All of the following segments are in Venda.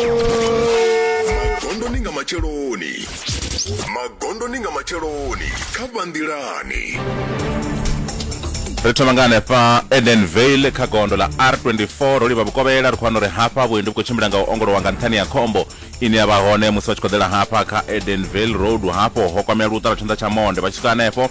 magondoni nga matsheloni magondoni nga matsheloni kha vhanḓilani ri thoma nga hanefha edenvale kha gondo ḽa r24 ro livha vhukovhela ri khou wana uri hafha vhuendi vhu khou tshimbila nga u ongolowa nga nṱhani ya khombo ine ya vha hone musi vha tshi khou ḓela hafha kha edenvale road hafho ho kwamea luṱa lwa tshanḓa tsha monde vha tshi swika hanefho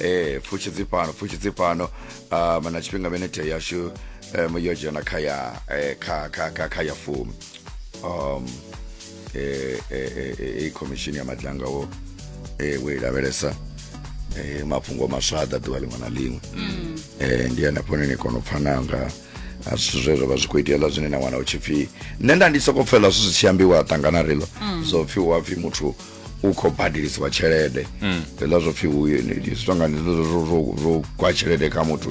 ee pfushi dzi fhano pfushi dzi fhano um na tshifhinga minete yashu um yo dzhena kha ya eh, kha kha kha kha ya fumi um eh, eh, eh, eh, i khomishini ya madlanga wo eh, wo i lavhelesa eh, mafhungo maswa a ḓa ḓuvha ḽiṅwe na ḽiṅwe eh, ndi hanefho ni kona u pfana nga a zwithu zwe zwa vha zwi khou itea ḽa zwine na wana u tshi pfhi nṋe nda ndi sokou pfela zwithu zwi tshi ambiwa ṱangana rilo zwo pfhi hu a pfhi muthu u khou badelisiwa tshelede mm. zwiḽa zwo pfhi zwi tonga zwo gwa tshelede kha muthu